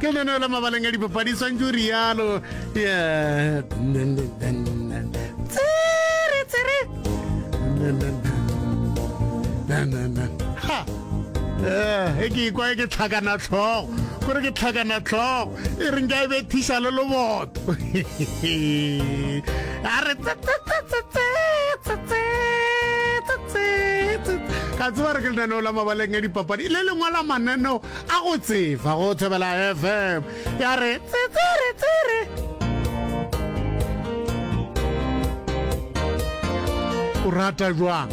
ke leno la mabaleng a dipapadi swantse o rialo tsere tsere e ke ikwa e ke tlhakana tlhogo kore ke tlhakana tlhogo e reng ka e be thiša le loboto a re ka tseba re ke lenaneo la mabaleng a dipapadi le lengwe la mananeo A go tseba go thobela FM ya re tsitsiri tsiri. O rata jwang?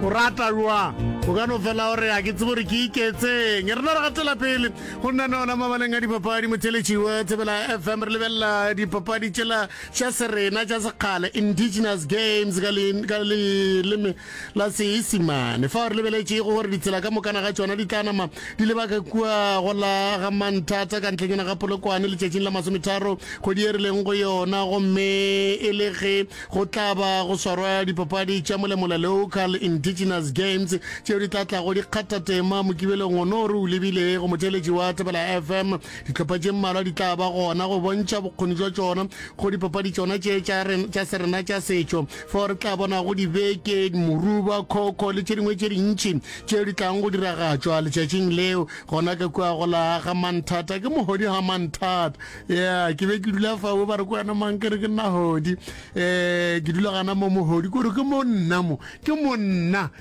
O rata jwang? o ka no fela gore a ke tsebo gore ke iketseng re no re gatela pele go nna nona mabaleng a dipapadi motheletšiwe thebela fm re lebelela dipapadi tšela tša serena tša sekgale indigenous games ka leleme la Seisimane, fao re lebeletšego gore ditsela ka mokana ga tšona di tla nama di leba ka kua go la ga Manthata ka ntlenyana ga Polokwane letšatšing la masometharo kgwedi e re leng go yona, gomme e le ge go tla ba go swarwa dipapadi tša molemola Local Indigenous Games tšeo di tla tlago di kgatha tema Mokibelong ono re o lebile go motheeletši wa Thapelo FM. Dihlopha tše mmalwa di tla ba gona go bontšha bokgoni jwa tšona go dipapadi tšona tše tša serena tša setšo. Fao re tla bonago dibeke, moruba, khokho le tše dingwe tše dintši tšeo di tlang go diragatšwa letšatšing leo. Gona ka kua go la ga Manthata, ke mohodi ga Manthata. Ya, ke be ke dula fao, ba re ko wena mang, ke re ke nna hodi. Um ke dula gana mo mohodi, ke gore ke mo nna mo, ke mo nna.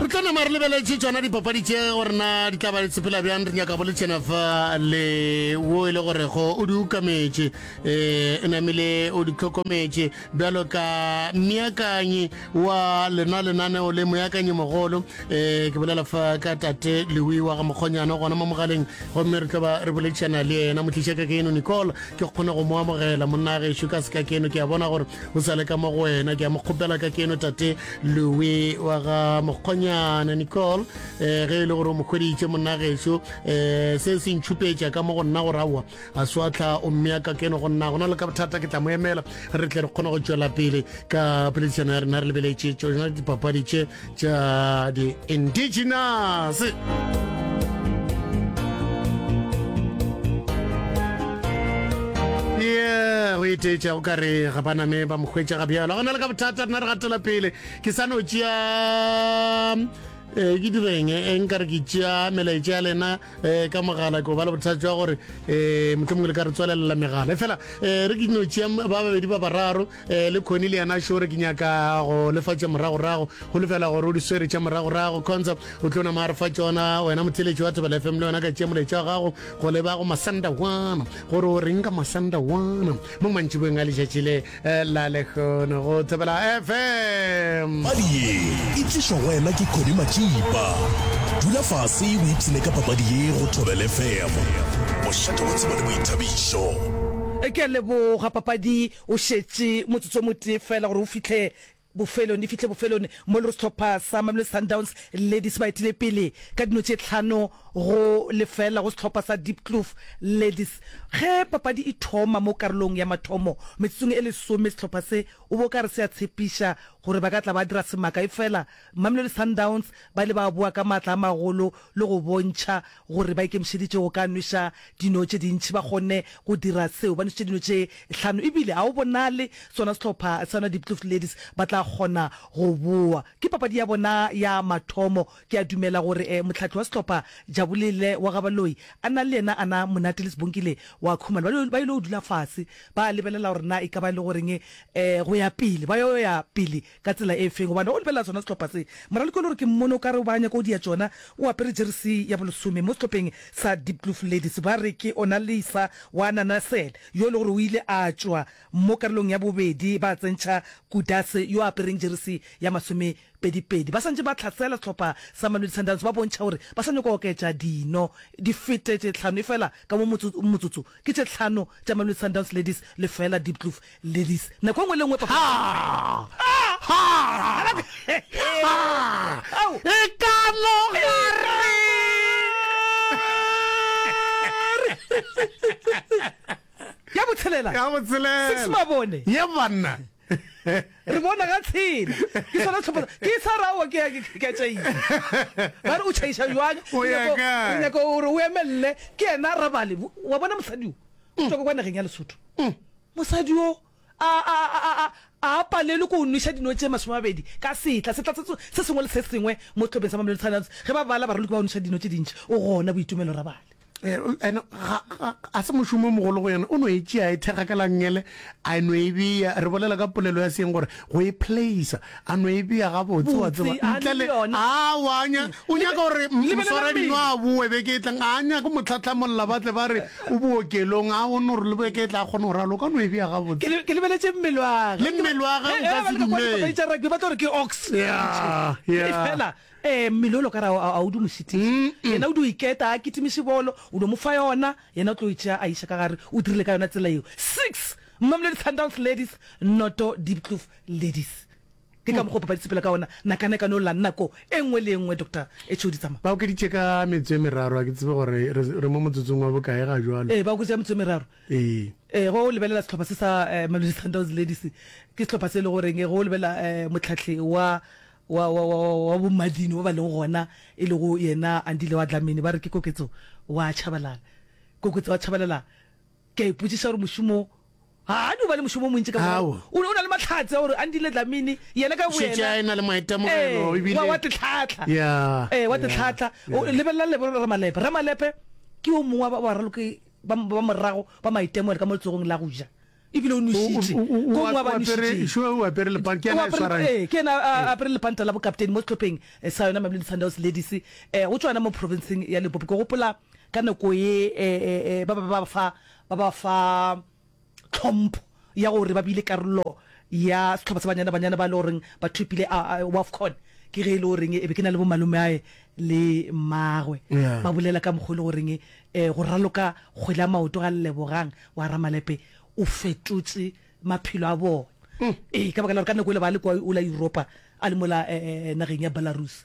re tla nama re lebeletse tsona dipapadi tše gore na di tla ba sepela bjang re nyaka boletšena fa le wo e le gorego o di ukametše um e namile o di tlhokometše bjalo ka meakanyi wa lena lenaneo le moakanyi mogolo um ke bolela fa ka tate lewi wa ga mokgonyana gona mo mogaleng gomme re tlo ba re boletšana le yena motlišaka ke eno nicole ke kgone go mo amogela monna a gešo ka seka keno ke a bona gore o sa le ka mo go wena ke a mo kgopela ka keno tate lowe wa ga mokgonyana nicole um ge e le gore o mo kgweditše monna gešo um eh, se se ntšhupetša ka mo go nna go rawa a swatlha o mmea ka keno go nna go na le ka bothata ke tla mo emela re tle re kgone go tšwela pele ka poledišano ya rena re lebeletše tsona dipapadi tše tša di-indigenous o eteetša o ka re ga baname ba mokgwetša ga bjalo go na le ka bothata rena re gatela pele ke sa no tšea um ke direng e nka re ke tšea melaetša ya lena um ka mogala ko ba le bothata jwa gore um motlho mongwe le ka re tswalelela megala e fela um re ke no tšea ba babedi ba bararo Eh, le khoni le yena šore ke nyaka go lefa tša moragorago go lefela gore o di swere tša moragorago consa o tlo nama a re fa tsona wena motheletši wa thobela fm le yona ka tšea moletša wa gago go leba go masanda wana gore o reng ka masanda wana mo mantšibong a letšatši le eh, la lekgono go thobela fm padi ye e tlišwa go wena ke khoni matšipa dula fase o ipsene ka papadi ye go thobela fm mošate wa tseba le boithabišo e ke a leboga papadi Go šetše motsotso o motee feela gore o fihle bofelong, di fihle bofelong, mo le go sehlopha sa Mamelodi Sundowns Ladies ba etile pele ka dino tše tlhano go lefeela go sehlopha sa Diepkloof Ladies. Ge papadi e thoma mo karolong ya mathomo, metsotsong e lesome, sehlopha se o bo ka re se a tshepiša gore ba ka tla ba dira semaka, efela Mamelodi Sundowns ba ile ba boa ka maatla a magolo le go bontšha gore ba ikemišeditše go ka nweša dino tše dintši ba kgonne go dira seo. Ba nwešitše dino tše hlano ebile ga go bonale sona sehlopha sa Nwa Diepkloof Ladies ba tla kgona go bowa. Ke papadi ya bona ya mathomo. Ke a dumela gore mohlahli wa sehlopha Jabulile wa ga Baloyi a na le yena a na monate le Sbongile wa Khumalo. Ba ba ile go dula fase ba lebelela gore na e ka ba e le goreng go ya pele ba yo ya pele Ka tsela e feng? Gobane o lebelela sona sehlopha se. Moraloki o le gore ke mmone o ka re ba nyaka go dia tšona, o apere jeresi ya bolesome mo sehlopheng sa Diepkloof Ladies. Ba re ke ona Lisa wa Nanasel, yo e le gore o ile a tšwa mo karolong ya bobedi ba tsentšha Kudase yo a apereng jeresi ya masomepedipedi. Ba swantše ba tlhasela sehlopha sa Mamelodi Sundowns ba bontšha gore ba sa nyaka go oketša dino di fete tše tlhano efela ka mo motsotso motsotso. Ke tše tlhano tša Mamelodi Sundowns Ladies lefela Diepkloof Ladies, nako engwe le engwe papa. Ha! Ha! Ha! E ka no ga re. Ya botshelela. Ya botshelela. Six mabone. Ye banna. re bona ga tshela ke sona tlhopha ke sa rawa ke ke tšai ba re o tšhaisa jwang o nyaka gore o emelele ke ena rabale wa bona mosadi o tswa kwa nageng ya lesotho Mosadi yo a, a, a, a, a, a a palelwe ke go nweša dino tše masomemabedi ka setla, setla se, se sengwe le se sengwe mo sehlopeng sa Mamelodi Sundowns. Ge ba bala baraloki ba go nweša dino tše dintši, o gona, Boitumelo Rabale. Ee, ene ga, ga, ga se mošomo o mogolo go yena. O no e tšea, a e thekga ka langele, a no e bea. Re bolela ka polelo ya seeng gore Go e placer, a no e bea gabotse, wa tseba, Botse, a ntle le le. yona. Aowa, a nya, o nyaka gore m- Lebelelang moswaradi pele. no a boe beke e tlang. A nyake go mo tlhahlamolla, ba tle ba re o bookelong. A o no re le beke e tla a kgona go ralo, o ka no e bea Ke gabotse. le- ke lebeletše mmele wa gage. Le mmele wa gage o He, ka he, se ba leka kwa dumele. dipapadi tša rugby, ba tlo re ke ox. Yeah, yeah. Fela, eh, mmele o lo ka ra a o di mo šitiša yena o di o iketa a kitimiše bolo o no mo fa yona yena o tlo e tšea a iša ka gare o dirile ka yona tsela eo six Mamelodi Sundowns Ladies, Noto Diepkloof Ladies. Ke ka mokgwa o papadi sepela ka ona, nakana e ka no lla nako e nngwe le e nngwe, Doctor Echou Ditsama. Ba okeditše ka metso e meraro, ga ke tsebe gore re mo motsotsong wa bokae ga jwalo. Ee, ba okeditše ka metso e meraro. Ee. Ee, go lebelela sehlopha se sa Mamelodi Sundowns Ladies, ke sehlopha se e le goreng go lebelela mohlahli wa wa wa wa wa bommadini ba ba leng gona e lego yena Andile wa Dlamini, ba re ke koketso wa Tshabalala. Koketso wa Tshabalala. Ke a ipotsiša gore mošomo wo ga a di o ba le mošomo o montši ka Ao. mogare. O ne o na le mahlatse a gore Andile Dlamini yena ka Šetše a boyena. e na le maitemogelo, Ee, ebile- wa wa Tetlhatla. Ya, Ee, wa ya, Tetlhatla. O ya. lebelela lebo Ramalepe. Ramalepe ke yo mongwe wa ba- wa raloki ba ba morago ba maitemogelo ka mo letsogong la go ja. Ebile o O- o- nošitše. o- o- Ko mongwe wa ba o apere- nošitšeng. sure, o apere lepang, ke O ena a apere- swarang. ee, ke ena a- a- a apere lepanta la bokaptene mo sehlopheng eh, sa yona Mamelodi Sundowns Ladies. Eh, go tswa yona mo provinceng ya Limpopo. Ke gopola Ka nako ye ba be ba fa ba ba fa tlhompho ya gore ba bile karolo ya sehlopha sa banyana banyana ba e le goreng ba thopile Wafcon ke ge e le goreng e be ke na le bo malomeae le mmagwe ba bolela ka mokgwa e le goreng go raloka kgwele ya maoto ga Lebogang wa Ramalepe o fetotse maphelo a bona ee ka baka la gore ka nako e le ba le kwa o la Europa a le mola nageng ya Belarus.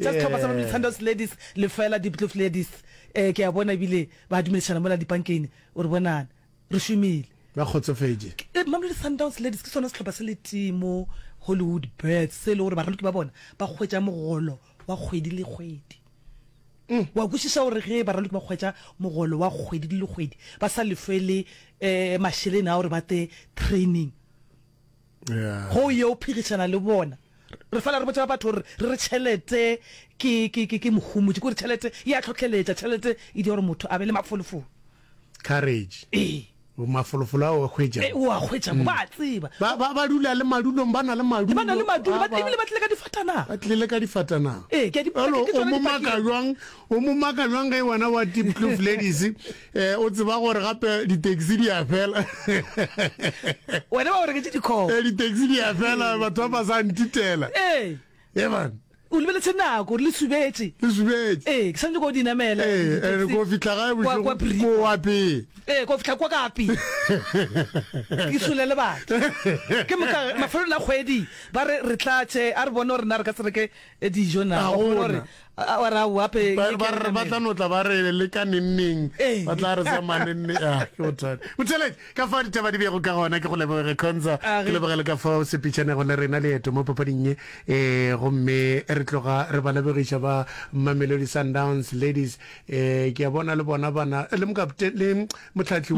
Tša sehlopha sa Mamelodi Sundowns Ladies lefela, Diepkloof Ladies ee ke a bona ebile ba dumedišana mola dipankeng o re bonana re šomile. Ba kgotsofetše. Mamelodi Sundowns Ladies ke sona sehlopha se le tee mo Hollywood Birds se e le gore baraloki ba bona ba hwetša mogolo wa kgwedi le kgwedi. O a kwešiša gore ge baraloki ba hwetša mogolo wa kgwedi le kgwedi ba sa lefe le mašeleng a gore ba te training, Go o yo phedišana le bona. Re fela re botša batho gore re re tšhelete ke mohumutši, ke gore tšhelete e a tlhohleletša, tšhelete e dira gore motho a be le mafolofolo. Courage. Ee. Mafolofolo ao a hwetšago. Ee, o a hwetšago, ba a tseba. Ba dula le madulong, ba na le madulo. Ba na le madulo, ebile ba tlile ka difatanaga. Ba tlile ka difatanaga. Ee, ke a di. O mo maka jwang, o mo maka jwang ge wena wa Diepkloof Ladies, eh o tseba gore gape di-taxi di a fela wena ba o reketse dikgogo eh di-taxi di a fela batho ba ba sa ntitela ee e man o lebeletse nako le subetse le subetse ee ke santse ko dinamela ee and ko fitlha gae bošego ko wapee ee ko fitlha kwa kape ke sole le batho ke moka mafelong a kgwedi ba re re tlatše a re bone gore na re ka tsereke dijo na gore ba tla no tla ba re le ka nenneng ba tla re sa manenne a ke bothata motheleng ka fa ditaba di bego ka gona ke go lebogege khonza ke lebogele ka fa o sepitšhanego le rena leeto mo papading ye um gomme re tloga re ba lebogiša ba mamelodi sundowns ladies um ke a bona le bona bana le mokapte le motlhatlhi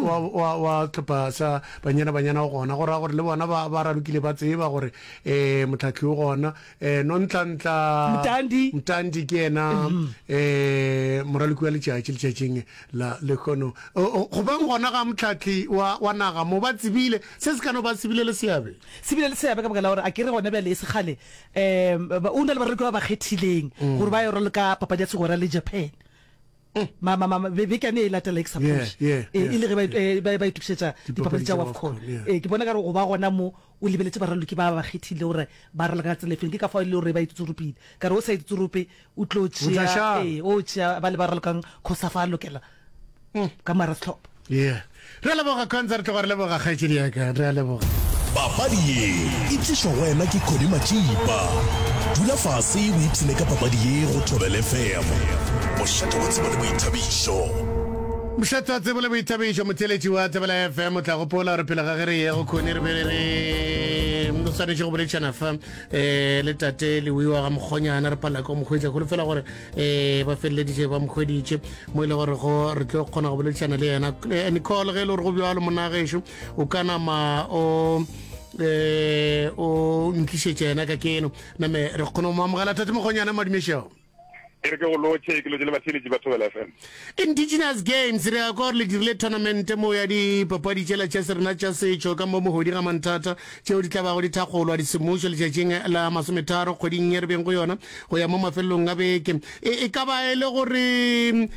wa tlhopha sa banyana banyana o gona go raya gore le bona ba ralokile ba tseba gore um motlhatlhi o gona eh, nontlantla mtandi, mtandi ke ena mm -hmm. eh, moraloki wa letšatši letšatšing la lekgono go beng gona ga motlhatli wa, wa naga mo ba tsebile se se ka no ba sebile le seabe sebile le seabe ka baka la gore a ke re gone bjale e segale um o na le baraloki ba ba kgethileng mm. gore ba yo raloka papadi ya segora le japan Ma, ma, ma, ma, be, beke yane e latela ke sa Yeah, phoše. yeah, E, e le ge ba, yes, eh, ba, ba itokišetša dipapadi Dipapadi tša tša WAFCON. WAFCON, yeah. Ee, ke bona ka gore go ba gona mo o lebeletše baraloki ba ba kgethile gore ba raloka ka tsela e feng. Ke ka fao e le gore ba ititsoropile. Ka re o sa ititsorope o tlo O tla tšea, šala. ee, o tšea ba le ba ralokang course a fa a lokela ka moara sehlopha. Yeah. Re a leboga Khonza, re tloga re leboga kgaetšedi ya ka. Re a leboga. Papadi ye e tlišwa go wena ke Connie Matšipa. Dula fase o ipshine ka papadi ye go Thobela FM. Mošate wa tsebo le boithabišo. Mošate wa tsebo le boithabišo, motheeletši wa Thobela FM o tla gopola gore pele ga ge re ye go Connie re be re re o swanetše go boledišana fa um le tate lewiwa ga mokgonyana re palela ka go mo hwetša kgolo fela gore um ba feleleditše ba mokgweditše mo e le gore go re tlo kgona go boledišana le yena eh, nicole ge e le gore go bjalo monagešo o ka nama o eh o ntlišetša yena ka keno name re kgona go mo amogela thate mokgonyana madumešego ke re ke go lotšhe ke lotše le batheletši ba thobela fm Indigenous Games, Re a kwa gore le dirile thonamente mo ya dipapadi tšela tša se rena tša setšo ka mo mohodi ga Manthata, tšeo di tla bago di thakgolwa disemmušo letšatšing la masometharo kgweding ye re beng go yona go ya mo mafelelong a beke. E, e ka ba e le gore um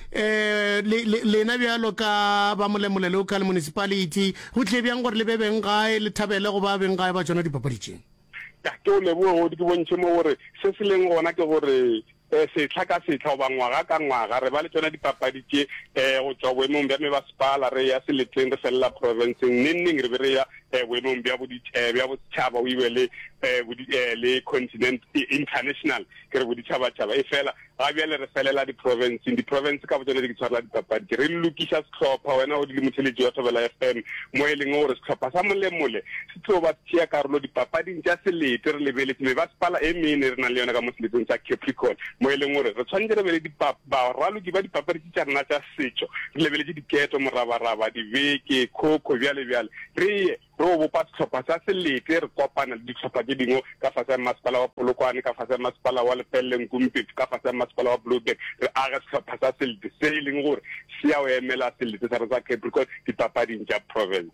le, le, lena bjalo ka ba Molemole Local Municipality go tlie bjang gore le be beng gae, le thabele go ba beng gae ba tšona dipapadi tše? Tate o leboge godi ke bontšhe mo gore se se leng gona ke gore um setlha ka setlha goba ngwaga ka ngwaga re ba le tsona dipapadi tše um go tšwa boemong bja mebasepala re ya seletleng re felela profenseng neng neng re be re ya um boemong bja bja bosetšhaba o ibe le um le continent international ke re boditšhabatšhaba e fela Ga bjale re felela diprofenseng. Diprofense ka botšona di ke tshwarela dipapadi. Ke re lokiša sehlopha, wena o di le motheletši wa Thobela FM, mo e leng gore sehlopha sa Molemole se tlo ba se tšea karolo dipapading tša selete. Re lebeletše mebasepala e mene e re nang le yona ka mo seleteng sa Capricorn, mo e leng gore re tshwanetše re be le baraloki ba dipapadi tše tša rena tša setšo, re lebeletše diketo, morabaraba, dibeke, khokho, bjale bjale. Re ye. Re o bopa sehlopha sa Seletle, re kopana le dihlopha tše dingwe ka fase ga Mmasepala wa Polokwane, ka fase ga Mmasepala wa Lepelle Nkumpetsu, ka fase ga Mmasepala wa Blouberg, re age sehlopha sa Seletle se e leng gore se ya o emela Seletle sa rena sa Capricorn dipapading tša Province.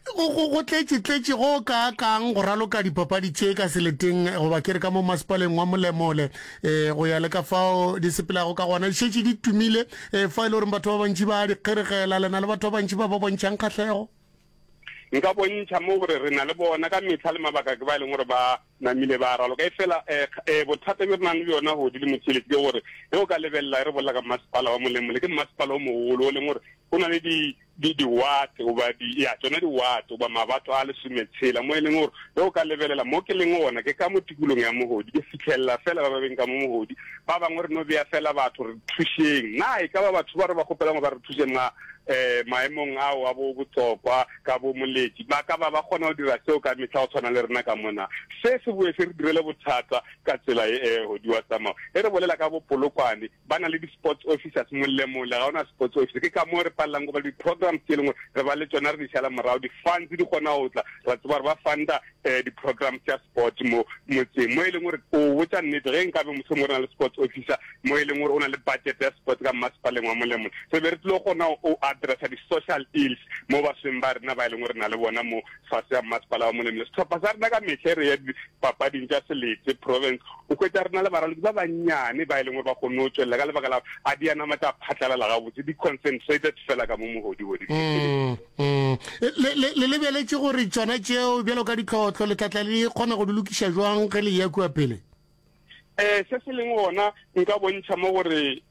Go, go, go tletše-tletše go kaakang go raloka dipapadi tše ka Seleteng, goba ke re ka mo Mmasepaleng wa Molemole, e, go ya le ka fao di sepelago ka gona, di šetše di tumile, e, fao e le goreng batho ba bantši ba a di kgeregela, le na le batho ba bantši ba ba bontšhang kgahlego. nka bontšha mo gore re na le bona ka mehla le mabaka ke ba e leng gore ba namile ba raloka e fela um bothata bjo re nang le bjona godi le motšheletse ke gore ge o ka lebelela e re bolela ka mmasepala wa molemole ke mmasepala o mogolo o leng gore go na le diwate goba ya tsone diwate goba mabato a lesometshela mo e leng gore ge o ka lebelela mo ke leng gona ke ka mo tikolong ya mogodi ke fitlhelela fela ba ba beng ka mo mogodi ba bangwe re no beya fela batho re thušeng na e ka ba batho ba re ba kgopelangwe ba re thuseng um maemong ao a bo botsokwa ka bo moletši ba ka ba ba kgona go dira seo ka mehla go tshwana le rena ka mona. Se se boe se re direle bothata ka tsela e e godi wa tsamao. Ge re bolela ka bo Polokwane, ba na le di-sports officers mollemole, ga ona sports officer. Ke ka moo re palelang gobane di-programs tše lengwe re ba le tšona re di šala morago, di-funds di kgona go tla, ra tseba gore ba funda um di-programs tša sports mo motseng mo e leng gore o botsa nnete ge nkabe mohlomong o na le sports officer mo e leng gore o na le budget ya sports ka mmasepaleng wa molemo re be re tlile gona o addressa di-social ills mo basweng ba rena ba e leng gore na le bona mo fase ya mmasepala wa molemo le setlhopha sa rena ka metlha e re ya dipapading tša seletse province o kwetsa rena le baralodi ba bannyane ba e leng gore ba kgonne go tswelela ka lebaka la a dianama tsa phatlalela gabotse di-concentrated fela ka mo mogodibodi mm. Le, le, le lebeletše gore tšona tšeo bjalo ka ditlhohlo le tlatla le kgona go di lokiša jwang ge le ya kua pele? Eh, se se leng gona nka bontšha mo gore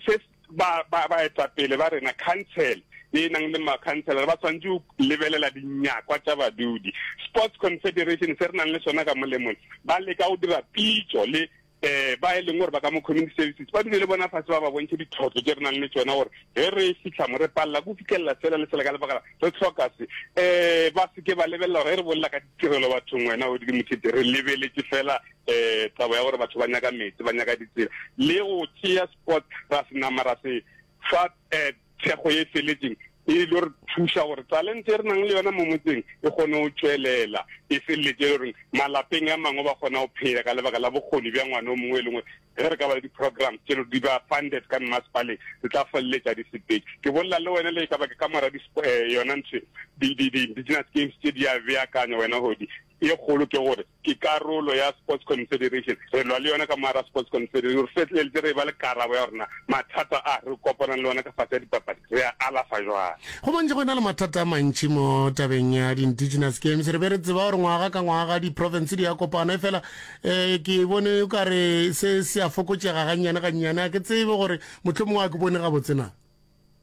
se ba ba ba etla pele ba rena council e nang le makhantsela ba tshwanetse go lebelela dinyakwa tša badudi sports confederation se re nang le sona ka molemong ba leka go dira pitso le um ba e leng gore ba ka mo community services ba dule le bona fase ba ba bontšhe ditlhotlo tse re nang le tsona gore ge re fitlha mo re palela ko fitlhelela sela le sela ka lebaka re tlhoka se um ba seke ba lebelela gore ge re bolela ka ditirelo bathong wena o dile mothete re lebeletse fela um taba ya gore batho ba nyaka metsi ba nyaka ditsela le go tšea sport ra se nama ra se fa um Thekgo ye e feletšeng e ilo re thuša gore talente e re nang le yona mo motseng e kgone go tšwelela e feleletše e le goreng malapeng a mangwe ba kgona go phela ka lebaka la bokgoni bja ngwana o mongwe e lengwe ge re ka ba le di-programs tše di ba funded ka mmasepaleng re tla feleletša di sepedi ke bolela le wena le e ka ba ke ka mora eh, yona ntho di-business games tše di a beakanya wena godi e kgolo ke gore ke karolo ya Sports Confederation, re lwa le yona ka moara Sports Confederation, re fetleletše re eba le karabo ya gore na mathata a re kopanang le ona ka fase ya dipapadi re a alafa jwang. Go bontšha go e na le mathata a mantši mo tabeng ya di-Indigenous Games. Re be re tseba gore ngwaga ka ngwaga di-province di a kopana, efela um ke bone o ka re se se a fokotšega gannyane gannyane. A ke tsebe gore mohlomongwe a ke bone gabotse na?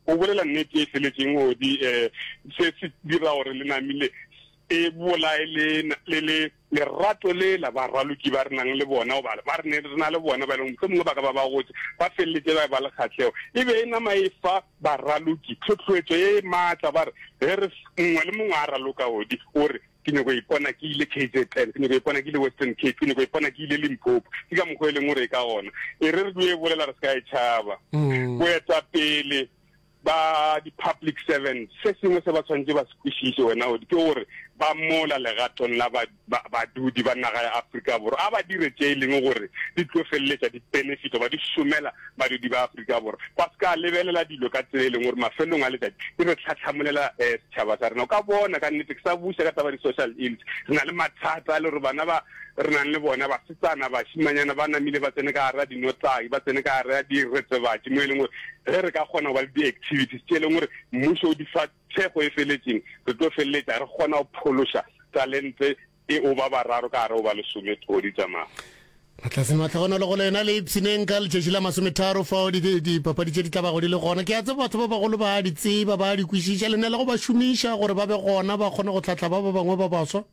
O bolela nnete e feletšeng, Odi. um Se se dira gore lenami le e bolae le, le, le lerato lela baraloki ba re nang le bona, goba ba re ne re na le bona, ba e leng mohlomongwe ba ka ba ba gotse, ba feleletše ba eba le kgahlego. E be e nama e fa baraloki tlhohloetšo ye maatla, ba re, ge re, mongwe le mongwe a raloka godi, o re, Ke nyoko ipona ke ile KZN, ke nyoko ipona ke ile Western Cape, ke nyoko ipona ke ile Limpopo. Ke ka mokgwa e leng gore e ka gona e re re dio e bolela re se ka e tšhaba. Boetapele ba di-public servants, se sengwe se ba tshwanetse ba se kwešiše wena Audi ke gore ba mola legatong la ba, ba, badudi ba naga ya Afrika Borwa. A ba dire tše e leng gore di tlo feleletša di-benefit goba di šomela badudi ba Afrika Borwa. Ba se ka lebelela dilo ka tsela e leng gore mafelelong a letšatši di re tlhahlamolela um setšhaba sa rena. O ka bona ka nnete, ke sa buša ka taba ya di-social ills, re na le mathata a le gore bana ba re nang le bona, basetsana, bašimanyana, ba namile ba tsene ka gare ga dinotlaki, ba tsene ka gare ga diretsebatši, mo e leng gore ge re ka kgona go ba le di-activities tše e leng gore mmušo o di fa thekgo e feletseng, re tlo feleletša re kgona go phološa talente e o ba bararo ka gare o ba lesome thodi tša mafa. Matlase mahlohonolo go lena le ipshineng ka letšatši la masometharo fao dipapadi tše di tla bago di le gona. Ke a tseba batho ba bagolo ba a di tseba, ba a di kwešiša, le ne le go ba šomiša gore ba be gona ba kgone go hlahla ba ba bangwe ba baswa.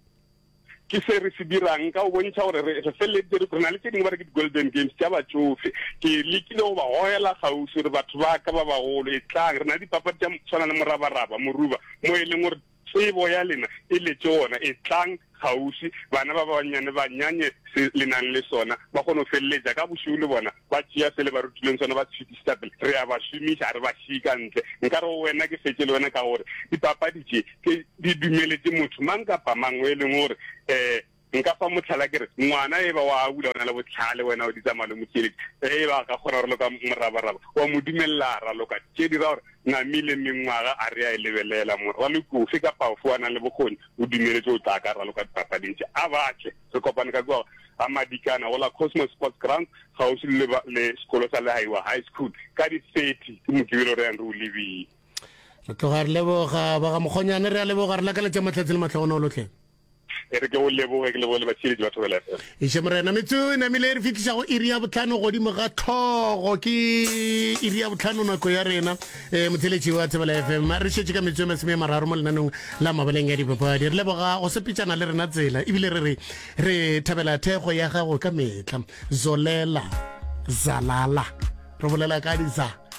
Ke se re se dirang ka go bontšha gore re feleleditse re na le tše dingwe ba re ke di-golden games tša batšofe. Ke lekile go ba gogela kgauswi gore batho ba ka ba bagolo etlang, re na le dipapadi tša tshwana le morabaraba, moruba, mo e leng gore tsebo ya lena e letše gona. Etlang kgauswi bana ba bannyane ba nyanye se le nang le sona, ba kgone go feleletša ka bošego le bona ba tšea se le ba rutilweng sona ba se fetišetša pele. Re a ba šomiša, ga re ba šie ka ntle. Nkare go wena ke fetše le wena ka gore dipapadi tše ke di dumeletše motho mang kapa mang o e leng gore um nka fa motlhala ke re ngwana e ba wa abula o na le botlhale wena o di tsamaya le motšeletši ge e ba ka kgona gore loka morabaraba wa mo dumelela a raloka tše dira gore namile mengwaga a re a e lebelela mo raloki ofe ka paofo a nang le bokgoni o dumeletse o tla ka raloka dipapading tše a batle re kopane ka kua ga madikana go la cosmos sports ground gausi le sekolo sa lehaiwa high school ka di-thirty ke mokibelo re yang re o lebile re tloga re leboga ba ga mokgonyane re a leboga re lakaletša mahlatse le matlhogono lotlhe e re ke go leboge ke leboge le batheletši ba thobela fm iše morena metso e namile e re fitlhisa go iri ya botlhano godimo ga tlhogo ke iri ya botlhano nako ya rena um motheletši wa thobela fm re šetše ka metso e masome ya mararo mo lenanong la mabaleng ya dipapadi re leboga go sepetšana le rena tsela ebile re re re thabela thekgo ya gago ka metlha zolela zalala re bolela ka diza